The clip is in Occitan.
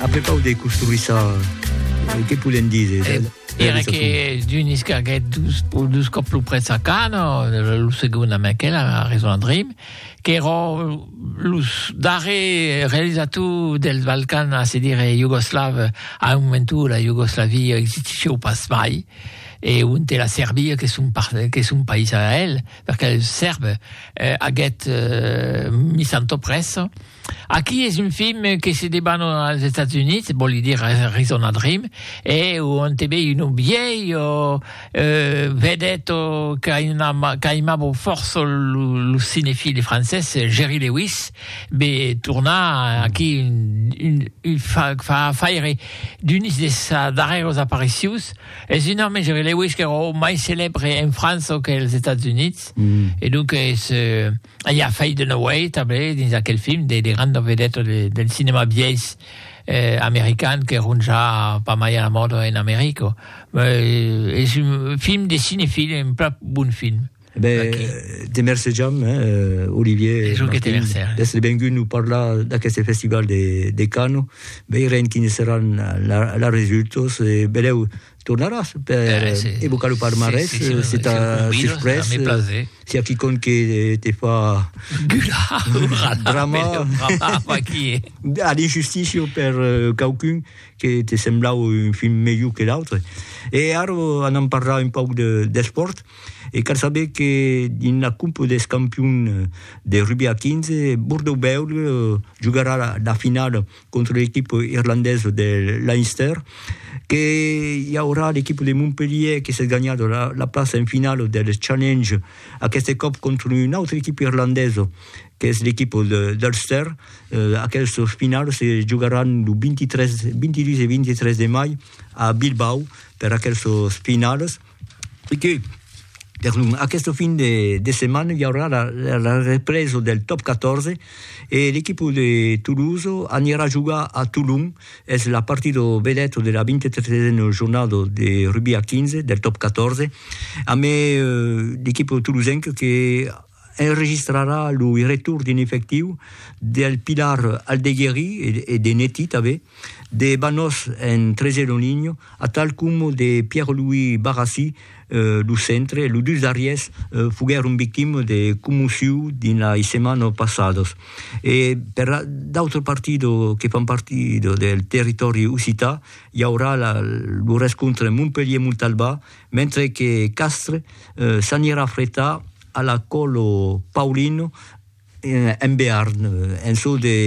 Après pau de construir ça, euh, que podem dire? de- Eh, de era realizacion? que d'un escarguet dus, po- dus còp lo prètz a Cano, lo lo segon amb aquel, a Raison and Dream, qu'èra los darrer realizator dels Balcans, a se dire Iugoslav, a un moment où la Iugoslavia existissieu pas mai, e on te la Serbia, que son, par, que son país a el, perquè el Sèrbe eh, aguèt eh, mis antò prèssa, Aqui es un film que se debana als Estats Units, vòli dir a Arizona Dream, e on te vei un vièlho euh, vedèth qu'aimavo fòrça lo cinefile francés Jerry Lewis, be tornar aquí un, un fa, fa faire d'unes de sa darrèros aparicions. Es un òme, Jerry Lewis, qu'èra o mai celèbre en França qu'els Estats Units, e donc es... I a Faye Dunaway tanben dins aquel film de de granda vedeta de del cinèma biais eh american qu'èron ja pas mai a la mòda en America. Eh es un film de cinefil, un plan bon film. E ben okay. te mercejam eh Olivier. Es jo que te merce. D'èstre vengut nos parlar d'aqueste festival de de Cannes. Veirem quines seràn la la resultos e belèu Tornaràs per eh, sí, evocar lo palmarès, sí, sí, sí, si t'as si surprès, si, si, si a quicon que te fa... Gula, hurra, drama, drama, qui est? A l'injustícia per uh, qualcun que te sembla un film melhor que l'autre. E ara anam parlar un pauc d'esport. De, e cal saber que dins la Coupe des campions de rugby a 15, Bordeaux-Bègle eh, jugarà la, la finala contra l'equip irlandés de Leinster, que i aurà l'equip de Montpellier que s'es ganhat la, la plaça en finala del Challenge, aqueste còp contra un autre equip irlandés, que es l'equip d'Ulster. Eh, aquels finals se jogaràn lo 23, 22 e 23 de mai a Bilbao per aquels finals. E que, per lo, aqueste fin de, de setmana, i aurà la, la, la represa del top 14 e l'equipa de Toulouse anirà jogar a Toulon. Es la partida vedeta de la 23a jornada de rugby a 15 del top 14. A me, eh, l'equipa tolosenca que enregistrarà lo retorn d'un efectiu del Pilar Aldegueri e de Netty tanben, de Banós en Trésé Lonigno, atal coma de Pierre-Louis Barrassy lo centre, los dus darriers foguèron victimas de commocion dins las setmanas passadas. E per d'autres partidas que fan partida del territòri occitan, i aurà lo rescontre Montpelhier-Montalbà, mentre que Castres s'anirà fretar a la Colo Paulino en Bearn, en çò de.